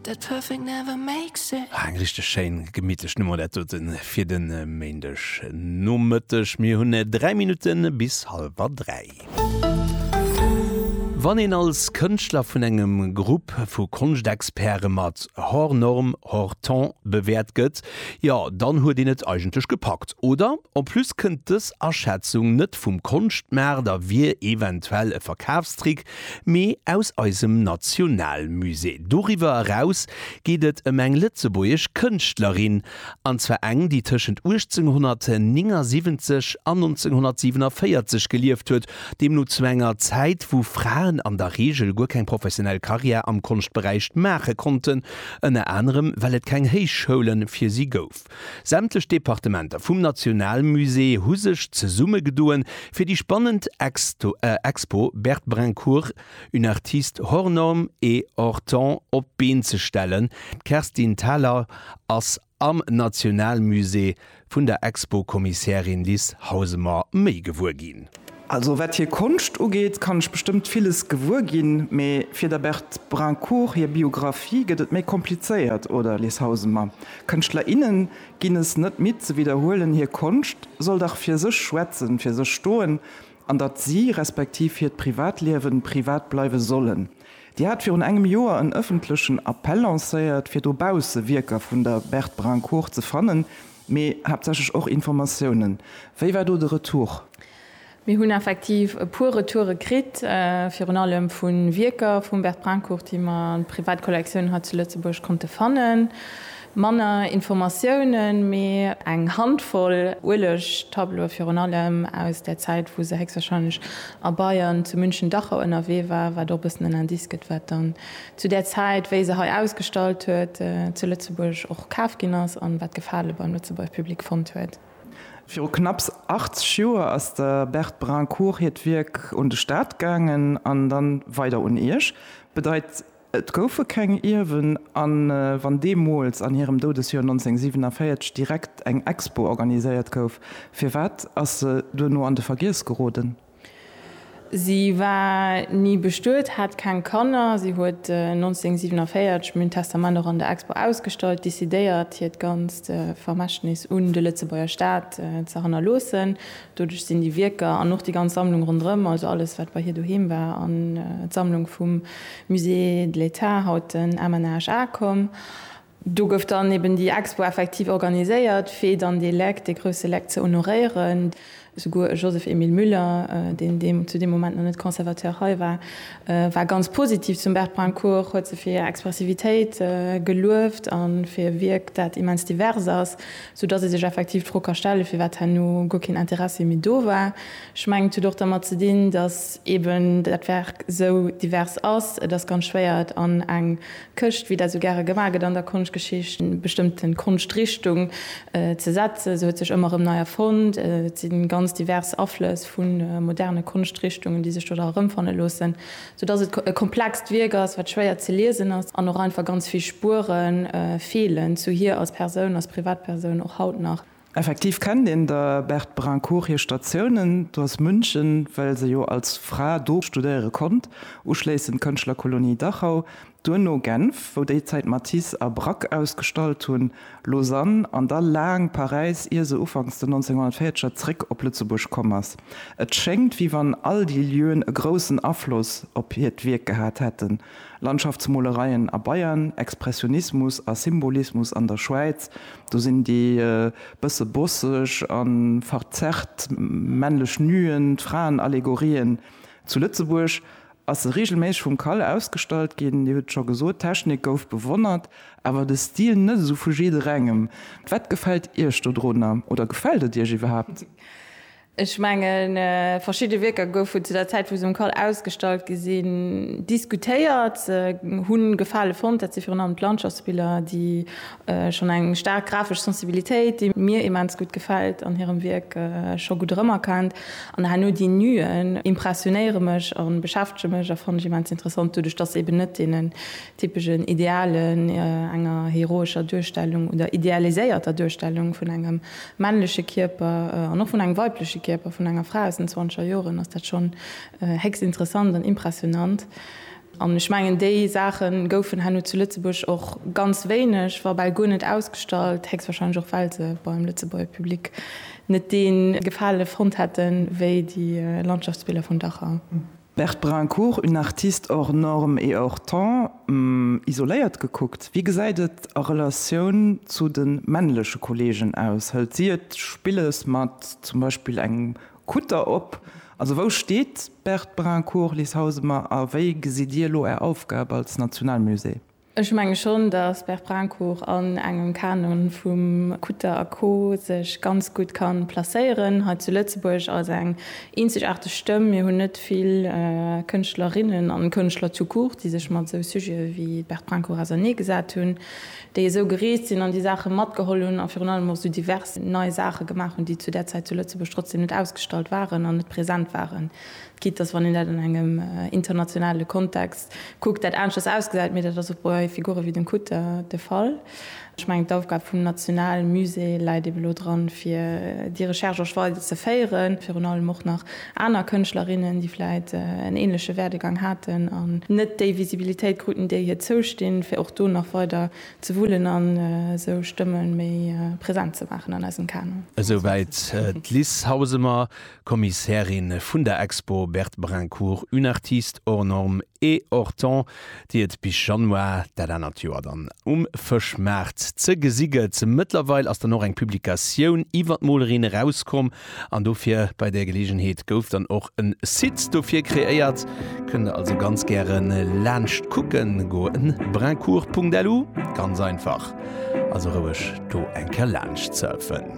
That perfect never makes it. Eng richteg schéin gemittlech Nummer dat dote fir de Méindeg Nomëtteg. Mir hunn 3 Minutte bis hallwer 3. Wann een als Kënschtler vun engem Grupp vu Konschtexperte mat hors norme, hors temps bewäert gëtt, jo dann huet een et eigentlech gepackt, oder? En plus kënnt dës Aschätzung net vum Konschtmaart a wier eventuell e Verkafstrick, mee aus eisem Nationalmusée. Doriwwer eraus geet et ëm eng lëtzebuergesch Kënschtlerin, an zwar eng, déi tëschent 1879 an 1947 gelieft huet, deemno zu enger Zäit, wou Fraen an der Reegel guer keng professionell Karriär am Konschtberäich maache konnten, ënner anerem well et keng Héichschoule fir si gouf. Sämtlech Departementer vum Nationalmusée hu sech zesummegedoen, fir déi spannend Expo Bert Brincourt, une artiste hors norme et hors temps op d'Been ze stellen. D'Kerstin Thalau ass am Nationalmusée vun der Expo-Kommissärin Lis Hausemer méi gewuer ginn. Also wat hir Konscht ugeet, kann ech bestëmmt villes gewuer ginn, mee fir der Berthe Brincourt hir Biographie gëtt et méi komplizéiert, oder, Les Hausemer? Kënschtler, innen ginn es net midd ze widderhuelen, hir Konscht soll dach fir sech schwätzen, fir sech stoen, an datt si, respektiv hiert Privatliewen, privat bleiwe sollen. Dir hat virun engem Joer en ëffentlechen Appell lancéiert, fir dobausse Wierker vun der Berthe Brincourt ze fannen, Mee haaptsächlech och Informatiounen. Wéi war do de Retour? Mir hunn effektiv e puer Retoure kritt, virun allem vu Wierker vum Bert Brincourt, déi mer an de Privatkollektiounen hei zu Lëtzebuerg konnte fannen. Manner Informatiounen, mee eng Handvoll Uelegtableaue virun allem aus där Zäit, wou se héchstwahrscheinlech a Bayern, zu München, Dachau ënnerwee war, wat och e bëssen en Indice gëtt, wat dann zu där Zäit, wéi se hei ausgestallt huet, zu Lëtzebuerg och kaf ginn ass an wat Gefale beim Lëtzebuerger Public fonnt huet. Viru knapps 80 Joer ass der Berthe Brincourt hiert Wierk un de Staat gaangen an dann weider un Iech. Bedeit, et goufe keng Ierwen. A wann deemools, an hirem Doudesjoer 1947, direkt eng Expo organiséiert gouf, firwat ass se duerno an de Vergiess geroden? Si war ni bestuet, hat keng Kanner. Si huet 1947 mün Testament och an der Expo ausgestallt, decidéiert hiert ganzt Vermächtnis un de Lëtzebuerger Staat ze hannerloossen. Doduerch sinn déi Wierker an och déi ganz Sammlung ronderëm, also alles wat bei hir doheem war, an d'Sammlung vum Musée de l'État, haut den MNHA, komm. Do gouf dann eben déi Expo effektiv organiséiert, fir dann dee Leck, dee grousse Leck ze honoréieren. Souguer e Joseph Emile Müller, deen deem zu deem Moment nach net Conservateur hei war, war ganz positiv zum Bert Brincourt, huet se fir hir Expressivitéit gelueft a fir e Wierk, dat immens divers ass, soudatt ee sech effektiv d'Fro ka stellen, firwat herno guer keen Interessi méi do war. Ech mengen, et huet och dermat ze dinn, datt eben dat Werk esou divers ass. Et ass ganz schwéier, et an eng Këscht, wéi dat esou gäre gemaach gëtt an der Konschtgeschicht, eng bestëmmte Konschtrichtung ze setzen. Se huet sech ëmmer erëm nei erfonnt. Et si ganz divers Aflëss vu moderne Konschtrichtungen, déi sech do da erëmfanne loossen, soudatt et e komplext Wierk ass, wat schwéier ze liesen ass an och einfach ganz vill Spuere feelen zu hir als Persoun, als Privatpersoun och haut nach. Effektiv kennt een der Berthe Brincourt hir Statiounen, do ass München, well se jo als Fra do studéiere konnt, uschléissend d'Kënschtlerkolonie Dachau, duerno Genf, wou déi Zäit Matisse a Braque ausgestallt hunn, Lausanne an da laang Paräis, ier se ufanks den 1940er zréck op Lëtzebuerg komm ass. Et schéngt, wéi wann all déi Lieuen e groussen Afloss op hiert Wierk gehat hätten. Landschaftsmolereien a Bayern, Expressionismus a Symbolismus an der Schwäiz, do sinn déi bësse bosseg a verzerrt männlech Nuen d'Fraenallegorien. Zu Lëtzebuerg ass se reegelméisseg vum Kal ausgestallt ginn. Dir hutt et scho gesot, d'Technik gouf bewonnert, awer de Stil net esou vu jidderengem. Wat gefält Iech dodrunner oder gefält et Iech iwwerhaapt? Ech mengen, verschidde Wierker goufen zu der Zäit, wou se um cal ausgestallt gi sinn, diskutéiert, hu Gefale fonnt. Dat si virun allem d'Landschaftsbiller, déi schonn eng staark grafesch Sensibilitéit, déi mir immens gutt gefält an hirem Wierk, scho gutt erëmerkennt. An herno déi Nuen impressionéiere mech a beschäftege mech a fannen ech immens interessant, doduerch dass se eben net deenen typeschen Idealen, enger heroescher Duerstellung oder idealiséierter Duerstellung vun engem männleche Kierper an och vun engem weibleche Kierper vun enger Fra aus den zwanzeger Joren, ass dat schonn héchst interessant an impressionant. An ech mengen, déi Saache goufen herno zu Lëtzebuerg och ganz wéineg, wa bal guer net ausgestallt, héchstwahrscheinlech och well se beim Lëtzebuerger Public net dee Gefale fonnt hätten, wéi déi Landschaftsbiller vun Dachau. Berthe Brincourt, Une artiste hors norme et hors temps, isoléiert gekuckt, wéi gesäit et a Relatioun zu de männleche Kolleegen aus? Hëlt si et spillesch mat zum Beispill engem Kutter op? Also wou steet d'Berthe Brincourt, Liz Hausemer, a wéi gesitt Dir elo Är Aufgab als Nationalmusée? Ech menge schonn, datt Berprincourt an engem Kanon vum Kutter a Co sech ganz gutt ka placéieren hei zu Lëtzebuerg als eng eenzegaarteg Stëmm. Mir hunn net vill Kënschtlerinnen an Kënschtler tout court, déi sech mat esou Sujete wéi Berprincourt auserneegesat hunn, déi esou gereest sinn an déi Saache matgeholl hunn a virun allem och esou divers nei Saache gemaach hunn, déi zu där Zäit zu Lëtzebuerg trotzdem net ausgestallt waren an net present waren. Quitte dass, wann een dat an engem internationale Kontext kuckt, dat aneschters ausgesäit, mee dat ass och bei Figure wéi dem Kutter de Fall. Ech mengen, d'Aufgab vum nationale Musée läit ebe lo dran, fir déi Recherche och weider ze féieren, virun allem och nach aner Kënschtlerinnen, déi vläicht en änleche Werdegang haten an net déi Visibilitéit kruten, déi hir zoustinn, fir och do nach weider ze wullen a sou Stëmme méi present ze maachen an eisem Kanon. Esouwäit d'Liz Hausemer. Kommissärin vun der Expo Berthe Brincourt, Une artiste hors norme et hors temps, déi et bis Januar dat anert Joer dann um Fëschmaart ze gesi gëtt. Mëttlerweil ass dann och eng Publikatioun iwwer d'Molerin erauskomm an dofir bei där Geleegenheet gouf dann och en Site dofir kreéiert. Kënnt der also ganz gäre laanscht kucken goen, brincourt.lu, ganz einfach, also roueg do eng Kéier laanscht surfen.